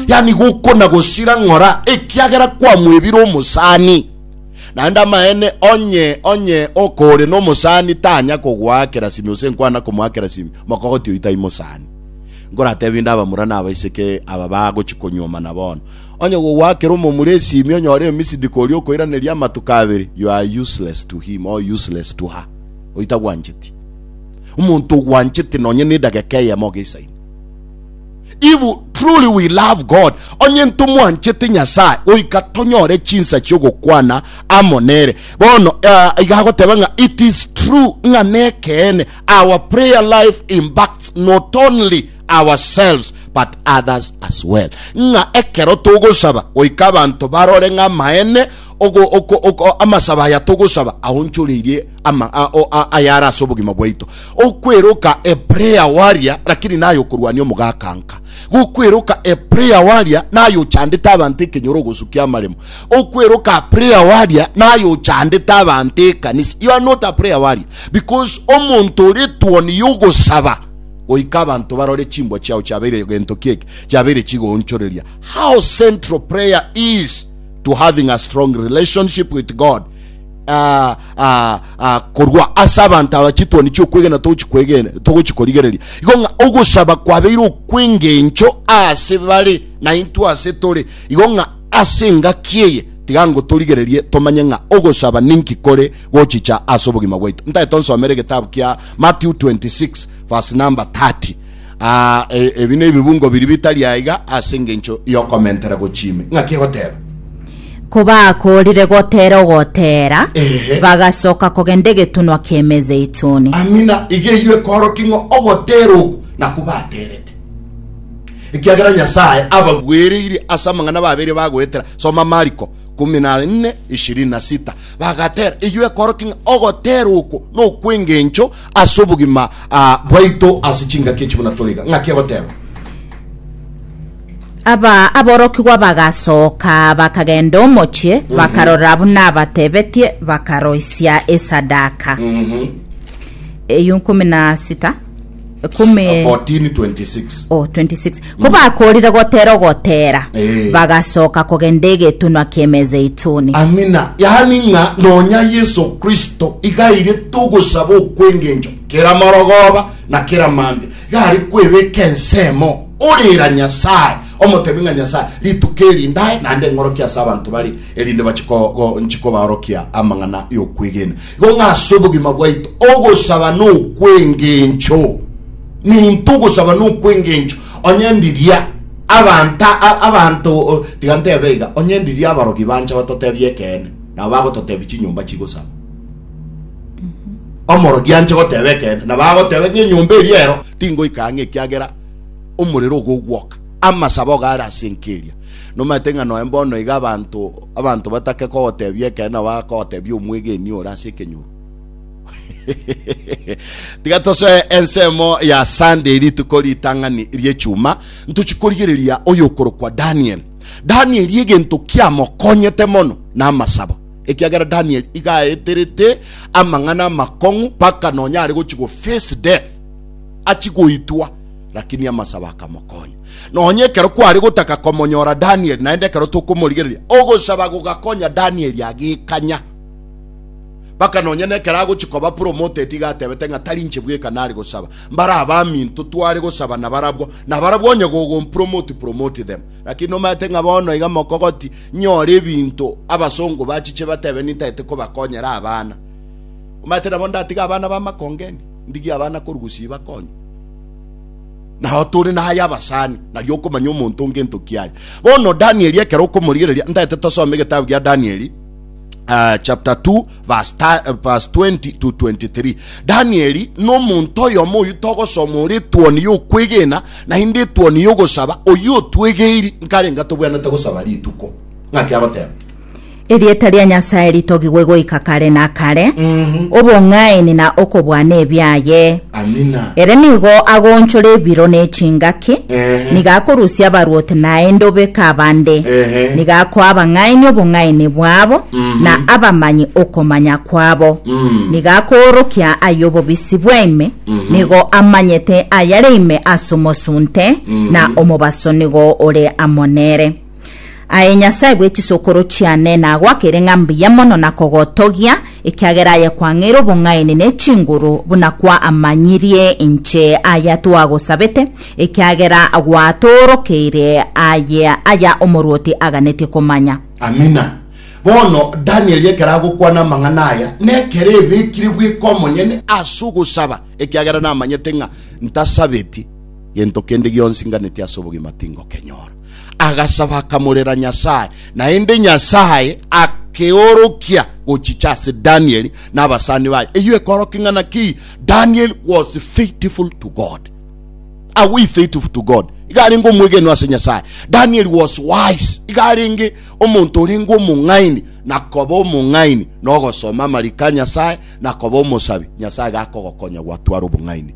yani gokona gosira ng'ora ekiagera kwamwebire omosani naende amaene onye onye okore no mosani tanya kogoakera simi ose nkwana komoakera simi mokogoti oitai mosani ngoratebi nda abamura na abaiseke aba bagochi konyoma na bono onye gogoakera omomura esimi onyore emisidi kori okoiraneria amatuko abere you are useless to him or useless to her oita gwancheti omonto ogwancheti nonye nedageka eyemo geisaini If truly we love God, onye ntomwanchete Nyasaye, goika tonyore chinsa chiogokwana amo nere. Bono uh, iga agoteba ng'a it is true ng'a nekeene our prayer life impacts not only ourselves but others as well. Ng'a ekero togosaba goika abanto barore ng'a maene amasaba aya togosaba aonchoreirie ama ayare ase obogima bwaito. Okweroka a prayer warrior lakini naye okorwania omogakanka. Gokweroka a prayer warrior naye ochandete abanto ekenyoro ogosukia amaremo. Okweroka a prayer warrior naye ochandete abanto ekanisa. You are not a prayer warrior because omonto ore tuoni yogosaba goika abanto barore chimbwa chiao chiabeire egento kieke chiabeire chigoonchoreria. How central prayer is to having a strong relationship with God ah, ah, ah, korwa ase abanto aba chitwani chiokwegena togochikwegena togochikorigereria igo ng'a ogosaba kwabeire okwengencho ase bare na intwe ase tore igo ng'a ase engaki eye tiga ngotorigererie tomanye ng'a ogosaba ninki kore gochicha ase obogima bwaito ntae tonsomere egetabu kia matthew 26 verse number 30 Aa, e, ebi nebibungo biria bitari aiga ase engencho y'okomentera gochiimi. Ng'aki egoteba? Kobakoorire gotera ogotera, Ehe. bagasoka kogenda egetunwa ki'Emezeituni. Amina, iga eyio ekoorokia ng'a ogotera oku nakwo baterete, ekiagera Nyasae abagwereire ase amang'ana babeire bagoetera. Soma Mariko kumi na nne ishirini na sita. Bagatera, eyio ekoorokia ng'a ogotera oko nokw'engencho ase obogima ah, bwaito ase chingaki echi buna tore iga. Ng'aki agoteba? Aba aborokigwa bagasoka bakagenda omochie, bakarora buna abatebetie, bakaroisia esadaka. Eyio nkumi na sita, ekumi, 1426 oh, 26 Kobakoorire gotera ogotera, Eh. bagasoka kogenda egetunwa ki'Emezeituni. Amina. Yaani ng'a nonya Yeso Kristo iga aire togosaba okw'engencho kera morogooba na kera mambia, iga are kwebeka ensemo orera Nyasae, omotebi ng'a Nyasae, rituko eri ndae naende eng'orokia ase abanto bare, erinde bache ko- go- nchi kobaorokia amang'ana y'okwegena. Igo ng'a ase obogima bwaito ogosaba nokw'engencho. ninto ogosaba nokwengencho, onye ndiria abanta abanto tiga ntebe iga, onye ndiria abarogi bancha batotebia ekeene, nabo bagototebia chinyomba chigosaba. Omorogi anche goteba ekeene, nabo agoteba ng'a enyomba eria ero tingoika ang'e ekiagera omorero ogogwoka. Amasabo iga are ase enkeria. Nomanyete ng'a noe mbono iga abanto abanto batake kogotebia ekeene nabo bagotebia omwegeni ore ase ekenyoro. tiga tosoe ensemo ya Sunday rituko ritang'ani ri'echuma ntochi korigereria oyokorokwa Daniel. Daniel egento kiamokonyete mono na amasabo ekiagera Daniel igaeterete amang'ana amakong'u paka nonya are gochi go face death achi goitwa lakini amasabo akamokonya nonya ekero kware gotaka komonyora Daniel naende ekero tokomorigereria ogosaba gogakonya Daniel agikanya Mpaka nonya nekero agochi koba promoted iga atebete ng'a tarinche bweka nare gosaba. Mbare abaminto tware gosaba na barabwo, na barabwo onye gogompromote promote them. Lakini nomaete ng'a bono iga mokogoti nyore ebinto abasongo bachiche batebe nintagete kobakonyera abana. Omaete nabo ndatiga abana ba makongeni, ndigie abana korugusi bakonywe. Nao tore naye abasani, nari okomanya omonto ngento kiare. Bono Danieli ekero okomorigereria, ntagete tosome egetabu gia Danieli, uh, chapter 2 verse, ta, uh, verse 20 to 23 danieli nomonto oyomo oyu togosoma ore etwoni yokwegena naende etwoni yogosaba oyu otwegeiri nkarenga tobwanete gosaba rituko ng'aki agoteba erieta ria nyasae ritogigwe goika kare na kare obong'aini na okobwana ebiaye Amina. Ere nigo agoonchora ebiro ne chingaki, Ehe. nigo akorusia abarwoti naende obeke abande, Ehe. nigo akoa abang'aini obong'aini bwabo, na abamanyi okomanya kwabo, nigo akoorokia ay'obobisi bwaime, nigo amanyete ayare ime as'omosunte, na omobaso nigo ore amo nere. Aye Nyasae bwe chisokoro chiane, nagoakere ng'a mbuya mono na kogotogia, ekiagera aye kwang'eire obong'aini ne chinguru, buna kwamanyirie inche aya twagosabete, ekiagera gwatoorokeire aye aya omorwoti aganetie komanya. Amina. Bono Danieli ekero agokwana amang'ana aya, nekero ebekire bweka omonyene ase ogosaba, ekiagera namanyete ng'a ntasabeti gento kende gionsi nganetie ase obogima tingokenyora. agasaba akamorera Nyasaye, naende Nyasaye akeorokia gochicha ase Daniel na abasani baye. Eyio ekorokia ng'a naki Daniel was faithful to God. Are we faithful to God? Iga arenge omwegenwa ase Nyasaye. Daniel was wise. Iga arenge omonto orenge omong'aini na koba omong'aini na ogosoma amariko a Nyasaye na koba omosabi. Nyasaye gakogokonya gwatwara obong'aini.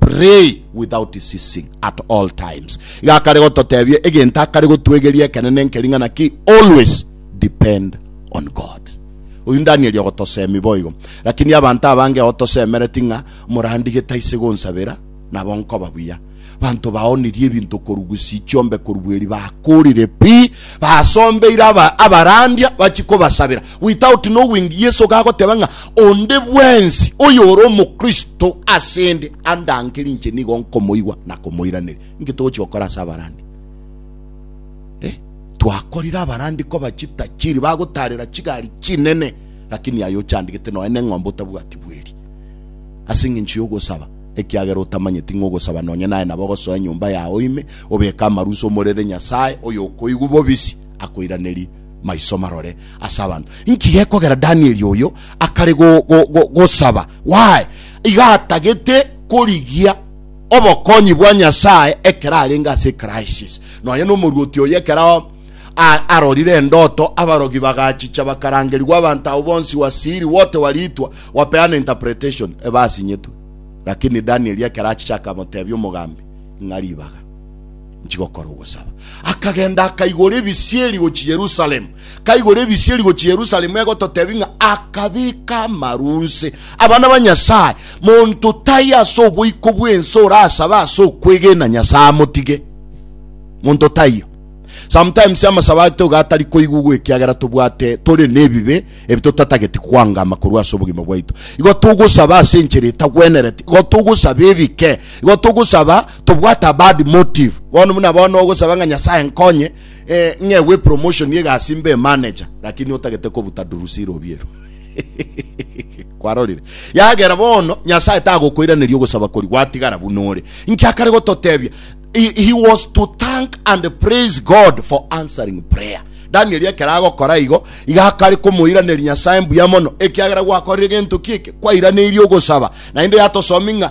Pray without ceasing at all times. Iga akare gototebia egento akare gotwegeria ekenene nkeri ng'ana ki? Always depend on God. Oyu Danieli ogotosemi boigo. Lakini abanto abange otosemereti ng'a morandige taise gonsabera, nabo nkoba buya. Banto baonirie ebinto korwa gusii chiombe korwa bweri bakorire pi, basombeire abarandia bachi kobasabera. Without knowing, Yeso gagoteba ng'a onde bwensi oyore omokristo asende andangere inche nigo nkomoigwa na komoiraneri. Inki togochi gokora ase abarandi? Eh, twakorire abarandi koba chitachiri bagotarera chigari chinene lakini aye ochandigete noe neng'ombe otabwati bweri ase eng'encho yogosaba ekiagera otamanyeti ng'ogosaba nonye naye nabo ogosoa enyomba yao ime obeka amarusa omorere nyasaye oyokoigwa bobisi akoiraneri maiso marore ase abanto. Inki gekogera Danieli oyo akare gosaba? Why? Iga atagete korigia obokonyi bwa Nyasae ekero arenge ase crisis. Nonya nomorwoti oyo ekero arorire endoto abarogi bagachicha bakarangerigwa abanto abo bonsi wasiri wote waritwa wapeana interpretation ebasinyetwe. Lakini Danieli ekero achicha akamotebia omogambi ng'a ribaga. nchigokora ogosaba. Akagenda akaigora ebisieri gochi Yerusalemu. Kaigora ebisieri gochi Yerusalemu egototebi ng'a akabika amarunse. Abana ba Nyasaye, monto tai ase oboiko bw'ense orasabe ase okwegena Nyasaye amotige. Monto taiyo. Sometimes amasaba aito gatari koigugwa ekiagera tobwate tore nebibe ebi totatageti kwangama korwa ase obogima bwaito. Igo togosaba ase enchera etagwenerete. Igo togosaba ebike. Igo togosaba tobwate a bad motive bono buna bono ogosaba ng'a nyasaye nkonye eh, ng'egwe promotion egasi mbe manager lakini otagete kobuta durusi robiero kwarorire yagera bono nyasaye tagokoiraneria ogosaba kori gwatigara buna ore nkiakare gototebia he, he was to thank and praise god for answering prayer daniel ekero agokora igo igakari komoiraneria nyasaye mbuya mono ekiagera gwakorire gento kieke kwairaneirie ogosaba naende yatosomi ng'a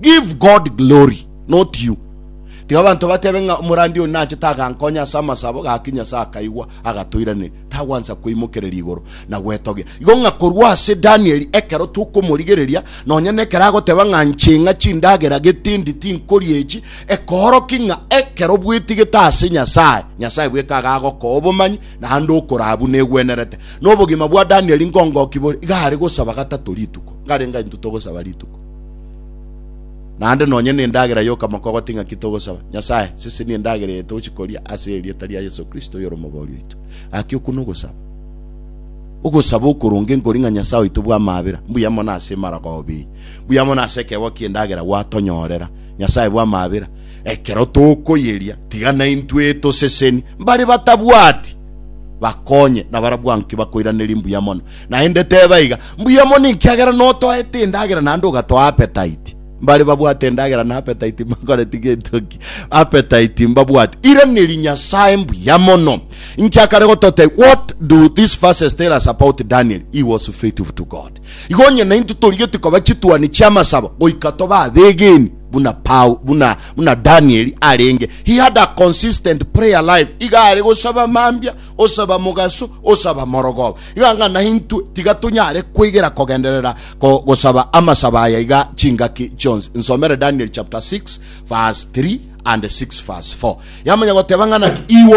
Give God glory, not you. Tiga abanto batebe ng'a omorandi oyo nachete agankonya ase amasabo, gaki Nyasae akaigwa, agatoiraneria. Tagwansa kweimokereria igoro na gwetogia. Igo ng'a korwa ase Danieli, ekero tokomorigereria, nonya nekero agoteba ng'a nche ng'a chindagera getindi tinkoria echi, ekooroki ng'a ekero bwetigete ase Nyasae, Nyasae bweka agagokoa obomanyi, naende okoraa buna egwenerete. Nobogima bwa Danieli nkongoki bore? Iga are gosaba gatato rituko. Nkarenge intwe togosaba rituko. Naende nonye nendagera yokamoko goti ng'aki togosaba Nyasae, sisi ni endagera eye togochi koria ase erieta ria Yesu Kristo oyore omobori oito. Gaki okwo nogosaba. Ogosaba okoronge nkori ng'a Nyasae oito bwa mabera, mbuya mono ase maragobi. Mbuya mono ase ekegwa ki'endagera gwatonyorera. Nyasae bwa mabera, ekero tokoyeria, tiga naintwe toseseni mbare batabwati bakonye nabarabwo nki bakoiraneria mbuya mono Naende teba iga, Mbuya mono ekiagera notoete endagera naende ogatoa appetite. Mbare babwate endagera na appetite mbakoreti getoki. Appetite mbabwate. Iraneri Nyasae mbuya mono. Nkiakare gotote, what do these verses tell us about Daniel? He was faithful to God. Igo onye nainto torigeti koba chituani chiamasabo goika toba abegeni buna Paul, buna, buna Daniel arenge. He had a consistent prayer life. Iga are gosaba mambia osaba mogaso, osaba morogoba. Iga ng'a naintwe tiga tonyare kwegera kogenderera ko- gosaba amasaba aya iga chingaki chionsi. Nsomere Daniel chapter 6 verse 3 and 6 verse 4. Yamanya goteba ng'a naki igo